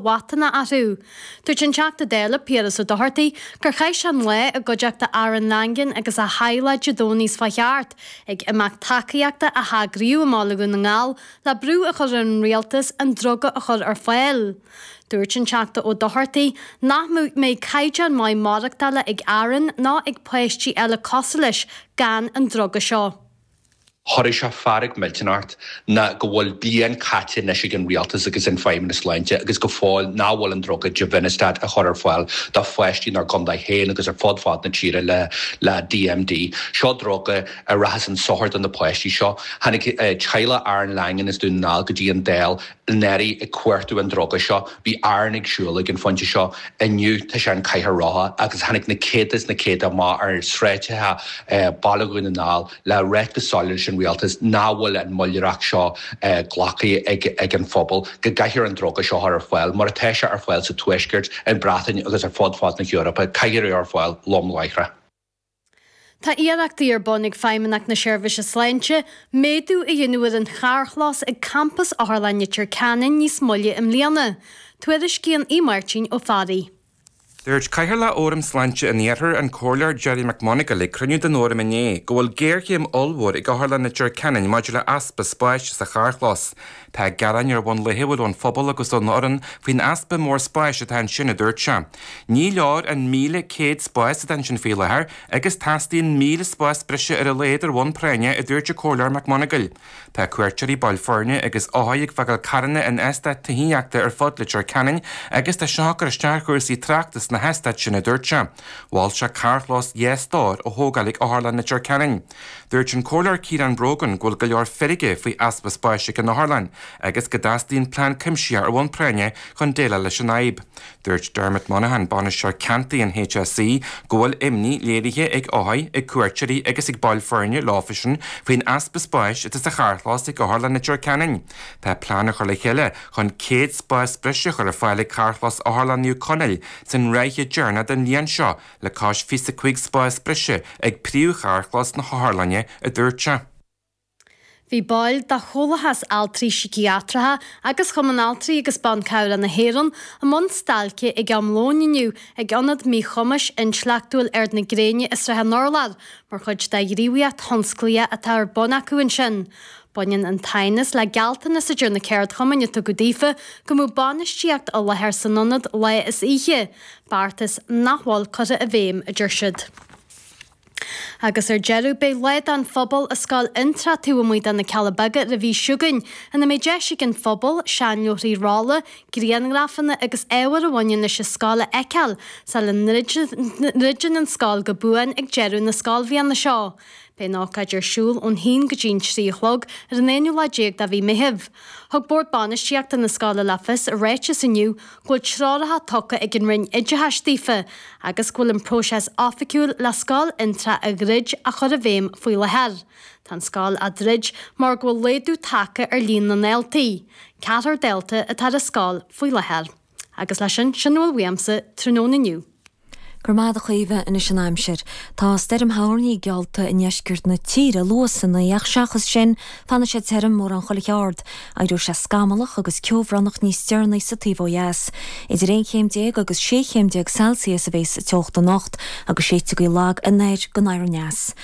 bhfabhtanna athrú. Dúirt an Teachta Dála, Piaras Ó Dochartaigh, gur chaith sé an lá i gcuideachta Aaron Langan agus a theaghlaigh Dé Domhnaigh seo chuaigh thart, ag imeacht tacaíochta a heagraíodh i mBaile Dhún na nGall le brú a chur ar an Rialtas an druga a chur ar fáil. Dúirt an Teachta Ó Dochartaigh nach mbeidh caighdeán maith maireachtála ag Aaron ná ag páistí eile cosuil leis gan an druga seo. Chuirfeadh sé fearg mhillteanach ort ná go bhfuil bliain caite anois ag an rialtas agus an Feidhmeannas Sláinte agus go fóill nach bhfuil an druga Givinostat á chur ar fáil do pháistí inár gcontae féin agus ar fud fad na tíre le DMD. Seo druga a rachas chun sochair do na páistí seo. Tháinig teaghlach Aaron Langan as Dún na nGall go dtí an Dáil anuraidh ag cuartú an druga seo, bhí Aaron ag siúl ag an phointe seo, inniu tá sé in cathaoir rotha agus tháinig na céadta is na céadta amach ar sráideacha Baile Dhún na nGall le ráit go soiléir leis an rialtas nach bhfuil an moilleadóireacht seo glactha ag an phobal, go gcaithfear an druga seo a chur ar fáil mar atá sé ar fáil sa tuaisceart, an Breatain agus ar fud fad na hEorpa, caithfear é ar fáil lom láithreach. Tá iarrachtaí ar bun ag Feidhmeannacht na Seirbhíse Sláinte méadú a dhéanamh ar an charrchlós ag Campas Otharlann Leitir Ceanainn níos moille i mbliana, tuairiscíonn Aodh Máirtín Ó Fearraigh. Dúirt Cathaoirleach Fhóram Sláinte an Iarthair, an Comhairleoir Gerry Mac Monagail ag cruinniú den Fhóram inné go bhfuil géarchéim ollmhór ag Otharlann Leitir Ceanainn maidir le easpa spáis sa charrchlós Tá gearáin ar bhonn laethúil ón bpobal agus ón fhoireann faoin easpa mór spáis atá ansin, a dúirt sé. Ní leor an 1,100 spás atá ansin faoi láthair agus teastaíonn 1,000 spás breise ar a laghad ar bhonn práinne, a dúirt an Comhairleoir Mac Monagail. Tá cuairteoirí, baill foirne agus othair ag fágáil carranna in eastáit tithíochta ar fud Leitir Ceanainn agus tá seo ag cur isteach ar chúrsaí tráchta sna heastáit sin, a dúirt sé. Mhol sé carrchlós dhá stór a thógáil ag Otharlann Leitir Ceanainn. Dúirt an Comhairleoir Ciarán Brogan go bhfuil go leor feirge faoi easpa spáis ag an Otharlann agus go dteastaíonn plean cuimsitheach ar bhonn práinne chun déileáil leis an fhadhb. Dúirt Dermot Monaghan, Bainisteoir Ceantair an HSE, go bhfuil imní léirithe ag othair, ag cuairteoirí agus ag baill foirne leofasan faoin easpa spáis atá sa charrchlós ag Otharlann Leitir Ceanainn. Tá plean á chur le chéile chun 100 spás breise a chur ar fáil ag Carrchlós Otharlann Naomh Conaill san ráithe deireanach den bhliain seo, le cois 25 spás breise ag príomhcharrchlós na hotharlainne, a dúirt sé. Bhí baill de Chomhlachas Altraí Síciatracha agus Chumann Altraí agus Ban Cabhrach na hÉireann i mbun stailce ag am lóin inniu ag Ionad Míchumais Intleachtúil Ard na Gréine i Srath an Urláir mar chuid de ghníomhaíocht thionsclaíoch atá ar bun acu ansin. Baineann an t-aighneas le gealltanas a deir na ceardchumainn a tugadh daofa go mbeadh bainistíocht i láthair san ionad lá is oíche. beartas nach bhfuil curtha i bhfeidhm, a deir siad. Agus ar deireadh, beidh Lá don Phobal i Scoil Fhionntrá taobh amuigh de na Cealla Beaga ar an mhí seo chugainn, ina mbeidh deis ag an phobal seanleabharthaí rolla, grianghrafanna agus ábhar a bhaineann leis an scoil a fheiceáil sula ndruideann an scoil go buan ag deireadh na scoilbhliana seo. Beidh an ócáid ar siúl ón haon go dtí an trí a chlog ar an aonú lá déag de mhí Meithimh. Thug Bord Bainistíochta na scoile le fios i ráiteas inniu go bhfuil treoracha tugtha ag an Roinn Oideachais daofa agus go bhfuil an próiseas oifigiúil le Scoil Fhionntrá a dhruid á chur i bhfeidhm faoi láthair. Tá an scoil á druid mar go bhfuil laghdú tagtha ar líon na ndaltaí, ceathrar dalta atá ar an scoil faoi láthair. Agus leis sin, sin a bhfuil uaimse tráthnóna inniu. Go raibh maith agat, a Chaoimhe, anois an aimsir. Tá stoirm thoirní geallta i ndeisceart na tíre, luath san oíche, ach seachas sin, fanfaidh sé tirim, mórán chuile cheard. Éireoidh sé scamallach agus ceobhránach níos deireanaí sa taobh ó dheas. Idir aon chéim déag agus sé chéim déag Celsius a bhéas sa teocht anocht agus séidfidh gaoth lag anoir go anoir aneas.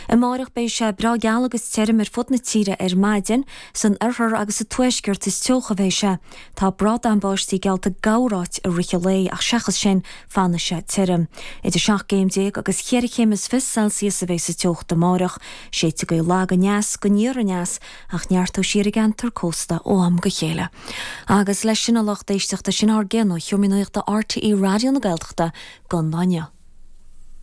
Amáireach beidh sé breá geal agus tirim ar fud na tíre ar maidin. San oirthear agus sa tuaisceart is teocha a bhéas sé. Tá brádán báistí geallta do chorráit i rith an lae ach seachas sin, fanfaidh sé tirim. Idir seacht gcéim déag agus cheithre chéim is fiche Celsius a bheidh sa teocht amáireach. Séidfidh gaoth lag aneas go aniar aneas ach neartóidh sí ar an gceantar cósta ó am go chéile. Agus leis sin, a lucht éisteachta, sin ár gcion ó Sheomraí Nuachta RTÉ Raidió na Gaeltachta don lá inniu.